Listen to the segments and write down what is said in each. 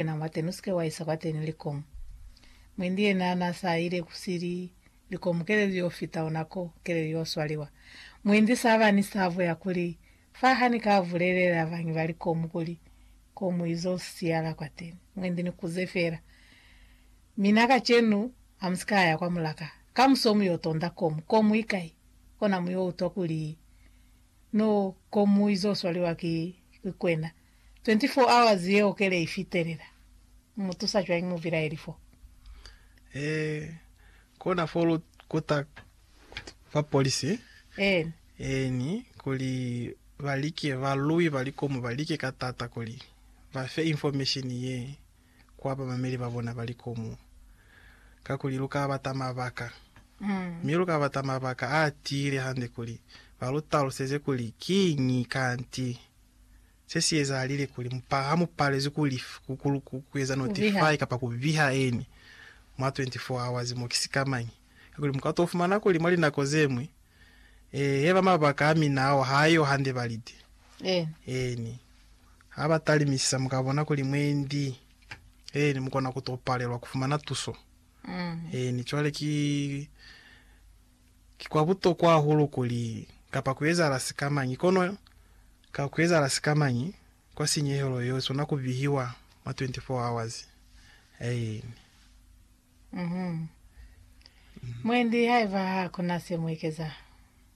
Yena mwateni usike waisa kwateni likong. Mwendi yena na sa ile ku sili likong keleli yo fita ona ko keleli yo swaliwa. Mwendi saba ni savo ya kuli fa ha ni ka bulelela bangi ba likong kuli ko mu izo siala kwateni. Mwendi ni kuze fela mina kacenu ha musika ya kwa mulaka. Kamuso mu yo tonda kong. Kong mu ikai? Kona mu yo utwa kuli no ko mu izo swaliwa ki kwena. 24 hours yeo kele i fitelela. Mu mu tusa cwañi mubilaeli fo? Ee, kona fo lu kuta bapolisi. Eeni. Eeni, kuli ba like, ba lwi ba likomo ba like ka taata kuli ba fe information ye kwa bamameli ba bona ba likomo. Kakuli lu ka bata mabaka. Mi lu ka bata mabaka a tiile hande kuli ba lu taluseze kuli kiñi kanti. Se si ezahalile kuli mupa, ha mu palezwi ku lif, ku, ku, ku, ku eza notify kapa ku biha eni mwa 24 hours mo, ki sikamañi? Kakuli muka to fumana kuli mwa linako zeñwi, ee, heba mabaka a mina ao ha a yo hande ba lite. Eeni. Ha ba talimisisa, muka bona kuli mwendi, eeni, mukona ku to palelwa ku fumana tuso. Eeni, cwale ki. Ki kwa butokwa hahulu kuli kapa kuezahala sikamañi, kono ka kuezahala sikamañi kwa sinyehelo yeo sona kubihiwa mwa 24 hours. Aini. Uhum. Mwendi, haiba hakuna se muekeza,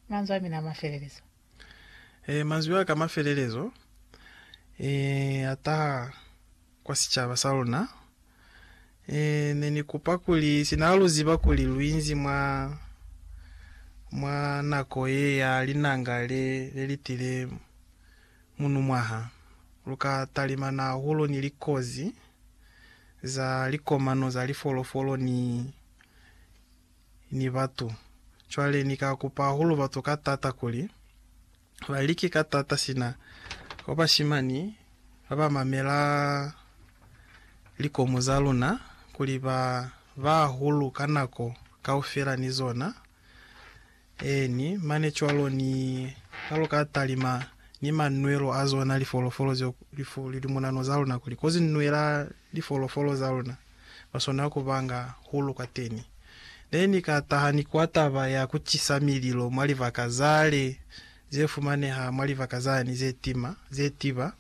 manzwi amina amafelelizo. Ee, manzwi a ka a mafelelezo ee a taha kwa sicaba sa luna. Ee, ne ni kupa kuli, sina ha lu ziba kuli lu inzi mwa, mwa nako ye ya linanga le, le li tile munumwaha, lu ka talimana hahulu ni likozi za likomano za lifolofolo ni, ni batu. Cwale Ni ka kupa hahulu batu ka taata kuli ba like ka taata sina kwa bashimani ba ba mamela likomu za luna, kuli ba ba hahulu ka nako kaufela ni zona. Eeni, mane cwalo ni kalo ka talima ni manwelo a zona lifolofolo zeo lifu lilumunano za luna kuli kozi nwela lifolofolo za luna, lwa swanela ku ba nga hulu kwateni. Ne ni ka taha ni kwa taba ya ku cisa mililo mwa libaka zale ze fumaneha mwa libaka zani ze tima, ze tiba.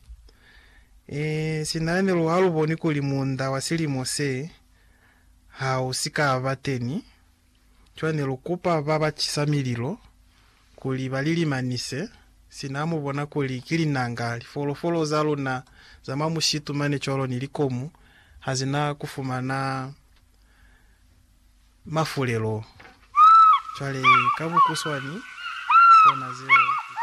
Ee, sina ne lu ha lu boni kuli muunda wa silimo se ha u si ka ba teni. Cwale ne lu kupa ba ba cisa mililo kuli ba li limanise, sina ha mu bona kuli ki linanga, lifolofolo za luna za mwa mushitu mane cwalo ni likomu ha zi na ku fumana mafulelo. Cwale ka bukuswani, kona zeo.